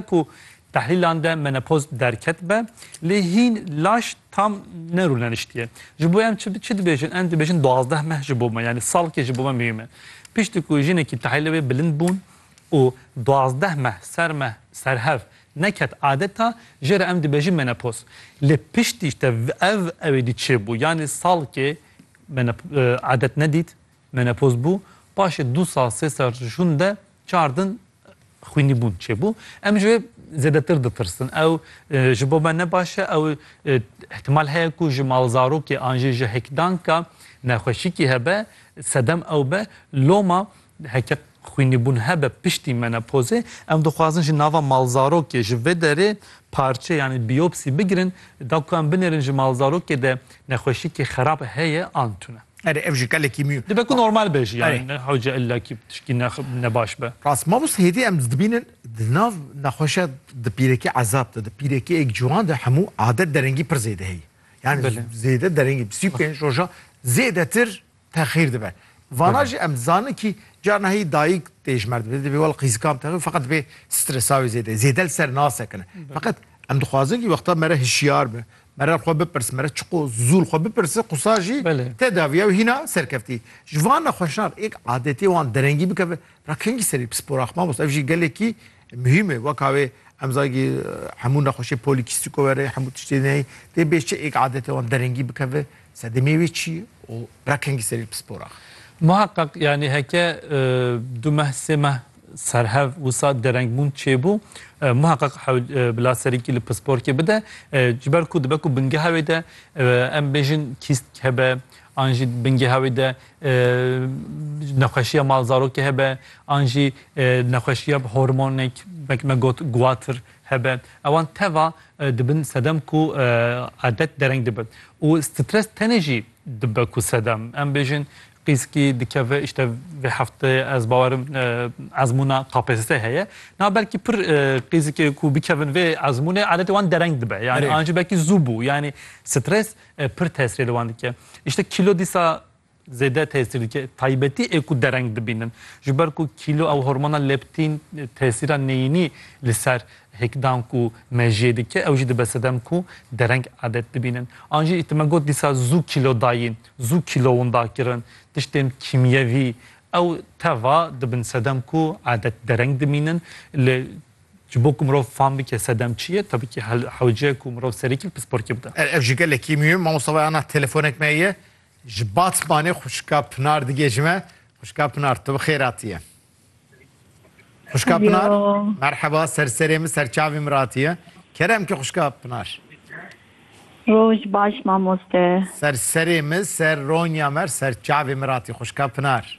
ku tehlîlan de menopoz derket be lê hîn laş tam nerûleniştiye. Ji bo em çi çi dibêjin? Em dibêjin duwazdeh meh ji bo me yanî salkê ji bo me muhîm e. Piştî ku jinekî tehlîlê wê bilind bûn û duwazdeh meh ser me ser hev neket adeta jê re em dibêjin menopoz. Lê piştî işte ev ewêdî çêbû yanî salkê adet nedît menopoz bû paşê du sal sê sal jûn de Çar din xwînîbûn çêbû. Em ji wê zêdetir ditirsin. Ew ji bo me ne baş e, ew ihtimal heye ku ji malzarokê an jî ji hêkdanka nexweşîkî hebe, sedem ew be. Loma heke xwînîbûn hebe piştî menopozê, em dixwazin ji nava malzarokê ji vê derê parçe yanî biyopsî bigirin, da ku em binêrin ji malzarokê de Nexweşîkî xerab heye an tune. Erê ev jî gelekî mî. Dibe ku normal be jî yani ne hewce illa kî tişkî ne ne baş be. Rast mamoste hêdî em dibînin di nav nexweşiya di pîrekê ezab de di pîrekê êk ciwan de hemû adet derengî pir zêde heye. Yani zêde derengî sî û pênc roja zêdetir Texîr dibe. Vana jî em dizanin kî carna heyî dayîk tê ji mer dibe, divê wel qîzikam te xwe feqet divê stresa wê zêde zêde li ser nasekine. Feqet em dixwazin kî wexta mere hişyar be, mere li xwe bipirse, mere çiqo zû li xwe bipirse qisa jî te dav ya wî hîna serkeftî. Ji van nexweşan êk adetê wan derengî bikeve ra kengî serî pisporax mamos. Ev jî gelekî Muhîm e weka wê em zagî hemû nexweşê polîkîstîko were, hemû tiştê neyê tê bê çi êk adetê wan derengî bikeve, sedemê wê çi ye û reqengî serê li pispor axe. Muheqeq yanî heke du meh sê meh serhev wisa derengbûn çêbû muheqeq hewl bila serîkî li pisporkê bide ji ber ku dibe ku bingeha wê de em bêjin kîst kebe an jî bingeha wê de Nexweşiya malzarokê hebe an jî nexweşiya hormonek wek me got guwatir hebe ewan teva dibin sedem ku adet dereng dibe û stres tenê jî dibe ku sedem em bêjin qîskî dikeve îşte vê hefteyê ez bawerim ezmûna KPSSê heye na belkî pir qîzikê ku bikevin vê ezmûnê adetê wan dereng dibe yanî an jî belkî zû bû yanî stres e, pir tesirê li wan dike. Îşte kîlo dîsa zêde tesir dike. Taybetî ê ku dereng dibînin. Ji ber ku kîlo ew hormona leptîn e, tesîra neyînî li ser hêkdan ku mejiyê dike ew jî dibe sedem ku dereng adet dibînin. An jî tu me got dîsa zû kîlo dayîn, zû kîlo winda kirin, tiştên kîmyevî ew teva dibin sedem ku adet dereng dimînin li Ji bo ku mirov fam bike sedem çi ye, tevî ki hewce ku mirov serî kil pisporkê bide. Er ev jî gelekî mûhim e. Mamosta wayana telefonek me ye. Ji Batmanê xwişka Pinar digê ji me. Xwişka Pinar, tu bi xêr hatiye. Xwişka Pinar, merheba, ser serê min, ser çavê min re hatiye. Kerem ki xwişka Pinar. Roj baş mamoste. Ser serê min, ser ronya me, ser çavê min re hatiye. Xwişka Pinar.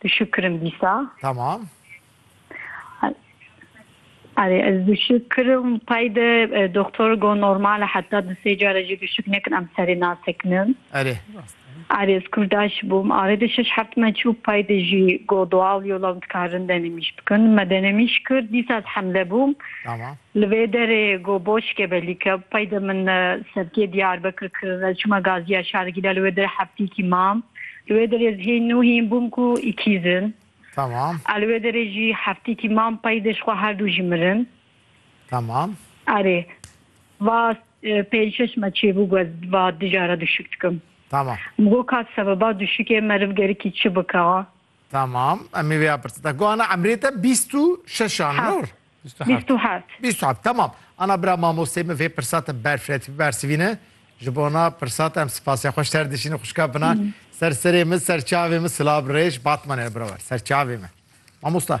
Tu şû kirin dîsa. Tamam. Arê ez duşik kirim tay de e, doktor go normal e heta di sê cara jî duşik nekin em serê nasekinin. Erê. Arê ez kurdaş bûm arê de şeş heft me çû pay de jî go doğal yola dikarin denemîş bikin. Me denemîş kir dîsa ez hemle bûm. Tamam. Li vê derê ku boçke belî ke pey de min serkê Diyarbekir kir, ez çûme gaziya Şargîla li wê der hefteyekî mam. Li wê derê ez hîn nû hîn bûm ku îkîz in. Tamam. A li wê derê jî hefteyekî mam pey de ji xwe her du jî mirin. Tamam. Erê. Va pênc şeş me çêbû ku ez va di jara duşik dikim. Tamam. Min got ka sebeba duşikê meriv gerikî çi bike? Tamam em ê vêya pirsin. Te ku ana emrê te bîst û şeş an Heft. nur? Bîst û Bîst heft. û heft. Bîst û heft tamam. Ana bira mamosteyê min vê pirsa te berfiretiy bibersivîne. Ji bona pirsa te em sipasê xwe ji ser dişînin xwişka Pinar. Ser serê min, ser çavê min silav rêj Batmanê li bira wer. Ser çavê min. Mamosta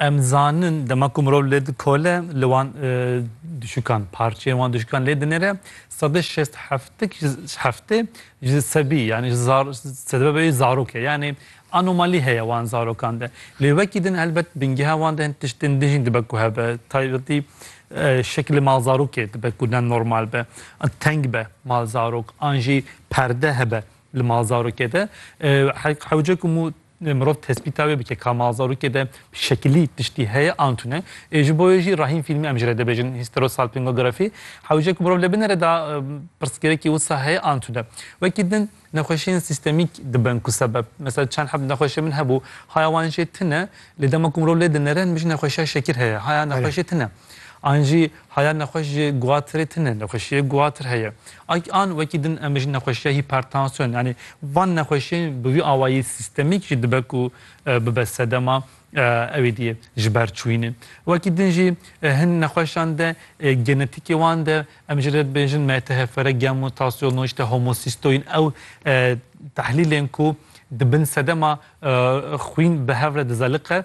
Em zanin dema ku mirov lê dikole li wan dişûkan parçeyên wan dişûkan lê dinêre sed û şêst heftik heftê ji sebî yanî ji zar sedebe beyî zarok e yanî anomalî heye wan zarokan de. Lê wekî din helbet bingeha wan de hin tiştên din jî dibe ku hebe taybetî şekilê mal zarokê dibe ku ne normal be an teng be mal zarok an jî perde hebe li mal zarokê de hewce ku Mirov tespîta wê bike ka ma zarokê de şekilî tiştî heye an tune. Ê ji bo wê jî rahîn fîlmî em ji re dibêjin histerosalpingografî. Hewce ku mirov li binê re da pirsgirêkî wisa heye an tune. Wekî din nexweşiyên sîstemîk dibin ku sebeb. Mesela çend heb nexweşiyên min hebû haya wan jê tune lê dema ku mirov lê dinere min jî nexweşiya şekir heye haya nexweşê tune. An jî Haya nexweş ji guatirê tune nexweşiyê guatir heye. Ayk an wekî din em ji nexweşiya hîpertansiyon yanî van nexweşiyên bi wî awayî sîstemîk jî dibe ku bibe sedema ewê diyê ji ber çûyînê. Wekî din jî hin nexweşan de genetikê wan de em ji re dibêjin MTHFR, gen mutasyon û îşte homosîstoyîn ew tehlîlên ku di bin sedema xwîn bi hev re dize liqe,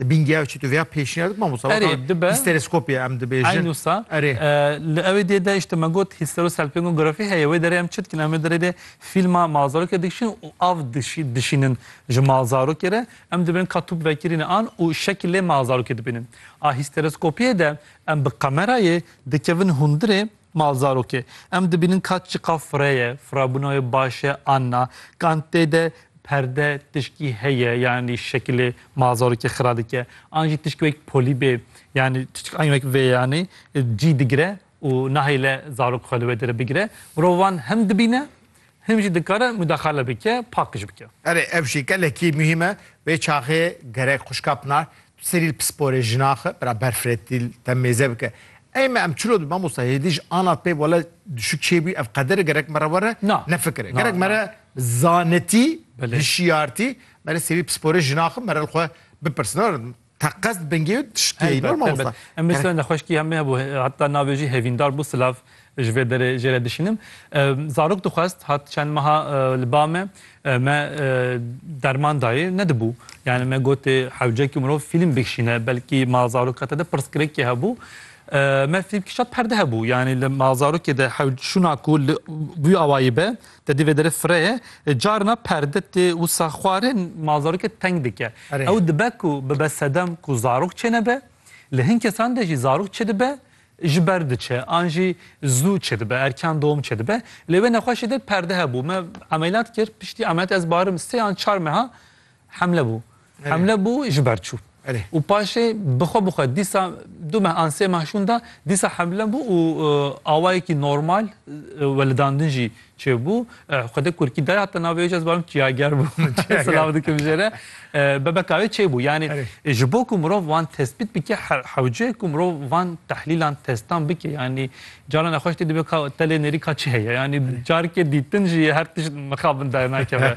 Di bîngeya çi tu vêya pêşniyar dikî mamosta? Erê dibe. Histereskopyê em dibêjin. Eyn wisa. Erê. Li ewê dê de işte me got histerosalpingografî heye. Wê derê em çi dikin? Em wê derê dê fîlma malzarokê dikişin û av dişî dişînin ji malzarokê re. Em dibin ka tûp vekirîne an û şekilê malzarokê dibînin. A histereskopyê de em bi kamerayê dikevin hundirê. Malzarokê, em dibînin ka çiqa fire ye, firabûna wê baş e an na, kan tê de perde tişkî heye yanî şekilê malzarokê xira dike, an jî tişkî wek polî bê yanî tişkî wek vê yanî cî digire û nahêle zarok xwe li wê dire bigire. Mirov wan hem dibîne Hin jî dikare mudexale bike, pakiş bike. Erê ev jî gelekî muhîm e. Vê çaxê gerek xwişka Pinar tu serî li pisporê jinan xwe bira ber firetî li te mêze bike. Ey me em çilo dibin mamosta hêdî ji anat pê wele dişû kê bûyî ev qedere gerek me re were nefikire. Gerek me re bi zanetî, hişyartî me re serî pisporê jinan xwe me re li xwe bipirsin. Teqez dibingê û dişikê yî normal wisa. Em mêr sewenda xweşkî hemê hebû heta navê jî hevîndar bû silav ji vê derê jê re dişînim. Zarok dixwest hat çend meha li ba me me derman dayê nedibû. Yani me gotê hewcekî mirov fîlm bikişîne belkî ma zaroka te de pirsgirêkê hebû. Me fîlm kişa perde hebû. Yani li ma zarokê de hewc şûna ku li wî awayî be Te dî vê derê fireye, carina perde tê wisa xwarin ma zarokê teng dike. Ew dibe ku bibe sedem ku zarok çênebe, li hin kesan de jî zarok çêdibe ji ber diçe an jî zû çêdibe, erkan dom çêdibe. Lê wê nexweşê de perde hebû. Me emeliyat kir, piştî emeliyatê ez barim sê an çar meha Hemle bû. Hemle bû ji ber çû. Û paşê bi xwe bi xwe dîsa du meh an sê meh şûn da dîsa hemle bû û awayekî normal welidandin jî çêbû. Xwedê kurkî dayê heta navê wê jî ez barim Çiyager bû. Silav dikim jê re. Bebeka wê çêbû. Yanî ji bo ku mirov wan tespît bike hewce ku mirov van tehlîlan testan bike. Yanî caran nexweş tê dibê ka telê nêrî ka çi heye. Yanî carikê dîtin jî her tişt mixabin dernakeve.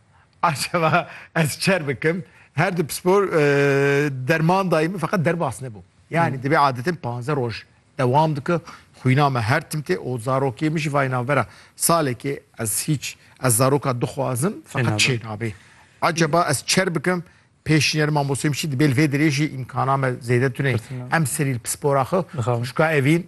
Acaba ez çer bikim? Her du pispor derman dayî min feqet derbas nebû. Yani divê adetin panze roj dewam dike. Xwîna me her tim tê û zarokê min jî vayê navbera salekê ez hîç ez zaroka dixwazim feqet çê nabê. Acaba ez çer bikim? Pêşîner mamostê min çi dibê li vê dirêjî îmkana me zêde tune em serî li pispora xwe xwişka evîn